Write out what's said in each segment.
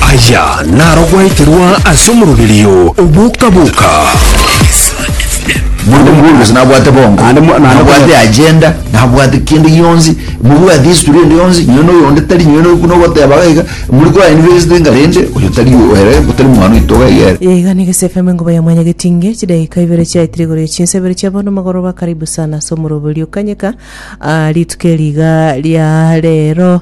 Aya naro gwaeterwa ase omoroberio oboka-boka. Monto mobworobereso nabwate bongo, Naende mo- naende nabwate konyora- agenda, nabwate kende gionsi, mobwate history ende yonsi, nonye na oyonde tari, nonye na oyo buna ogoteba iga iga, muri ko invest iga rende, oyo tari oyo, ere otari mwana oito iga iga ere. Iga nigo Safe FM engoba ya mwanya getinge chidakika ibere chiaetire igoro ya chinsa ibere chia bono magoroba karibu sana ase omoroberio kanyeka ah, rituko eri iga ria rero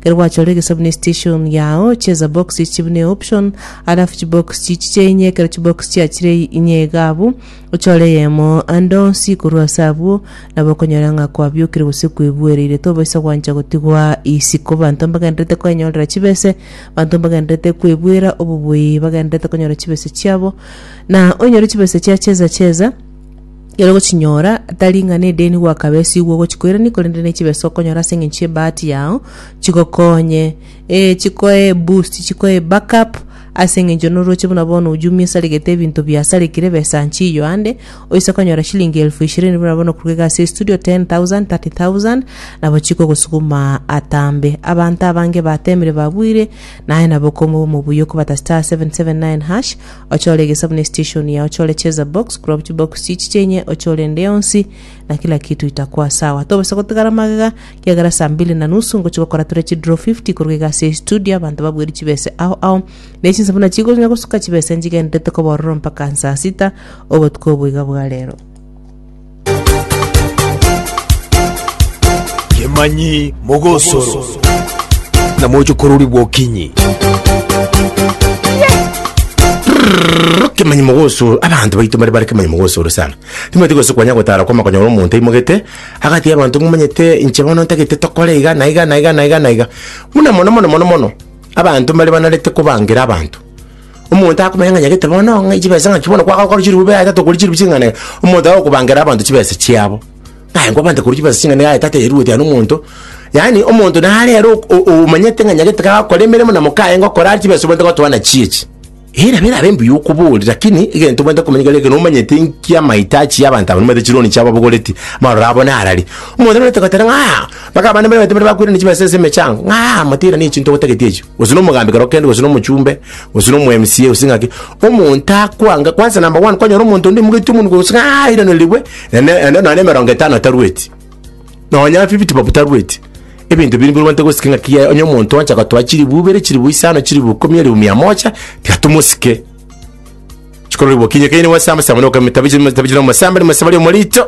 Ekero gwachora egesabu ne station yao, cheza box echi bune option, alafu chibox chichi chieinye ekero chibox chiachire inye iga abwo, ochore eyemo ande onsi korwa ase abwo, nabo okonyora ng'a kwabiokire gose kwebuereire. Tobaisa gwancha gotigwa isiko. Banto mbagendererete koenyorera chibese, banto mbagendererete kwebuera obobuya, bagendererete konyora chibese chiabo, na oinyore chibese chia cheza cheza, Ekero ogochinyora, tari ng'a nedeni gwakaba esigwe ogochia koirania, korende ne chibesa okonyora ase eng'encho y'ebahati yao, chigokonye, eh, chikoe eboost, chikoe eback up, ase eng'encho noroche buna bono oo Jumia esaregete ebinto biasarekire, besa nchiyo ande, oise konyora shilingi elfu ishirini buna bono koruga iga ase estudio, 10,000, 30,000, nabo chikogosuguma atambe. Abanto abange bateemire babuire, naye nabo okomoba omobuya okobata *779#, ochore egesabuni esiteshoni yao, ochore cheza box korwa chibox chichi chienye, ochore ende yonsi na kila kitu itakwa sawa. Tobasa gotigara magega kiagera saa mbili na nusu ngochi gokora tore chidraw 50 korwa egasi ya studio abanto babweri chibese ao ao ne chinsabuna chigonya gosuka chibese nchigenderete koba ororo mpaka saa sita obotuko obo iga bwa rero. Kemanyi Mogosoro na mochokorori bw'okinyi. kemanyi mogosoro abanto baito bare bare kemanyi mogosoro sana timwete gose kwanya gotara kwama konyora omonto aimogete agati abanto momanyete inche bono ntagete tokore iga na iga na iga na iga na iga buna mono mono mono mono abanto mbare banarete kobangera abanto Omonto akomanya ng'a nyagete bono ng'a chibesa ng'aki bono kwagokora chirube bwa etato korwa chirube ching'ana iga, omonto aye okobangera abanto chibesa chiabo. Ng'aye nkwabante korwa chibesa ching'ana iga aye tatebirueti aye na omonto, yaani omonto nare ere ok- o- o- omanyete ng'a nyagete kagokora emeremo na moka aye ngokora are chibesa obwenerete gotoa nachio echi. Eyi nabo erabe mbuya okobori, lakini egento obwenerete komanya kere ekero omanyete nki amahitaji ya abanto aba nibaete chironi chiabo abogoreti, maroro abo narari. Omonto nabwate goteba ng'a mpaka abana mbaibaite mbare bakoirana chibesa ase emechango, ng'a moteirane echio ntogotagete echio. gose nomogambi kero kende gose nomochumbe gose nomo MCA gose ng'aki omonto akwanga kwanza number one kwanyora omonto onde omogeti omonwe gose ng'a airanerigwe ene ene nonye emerongo etano atarueti nonya fifty bob tarueti ebinto biri mbirobwate gosike ng'aki yaye onye omonto oancha gotoa chilifu ibere chilifu isano chilifu ikomi elifu mia moja tiga tomosike chikororigwa okinye kaini gwasamba samba nokameta bichi meta bichi nomosambe nomosambe ria omorito.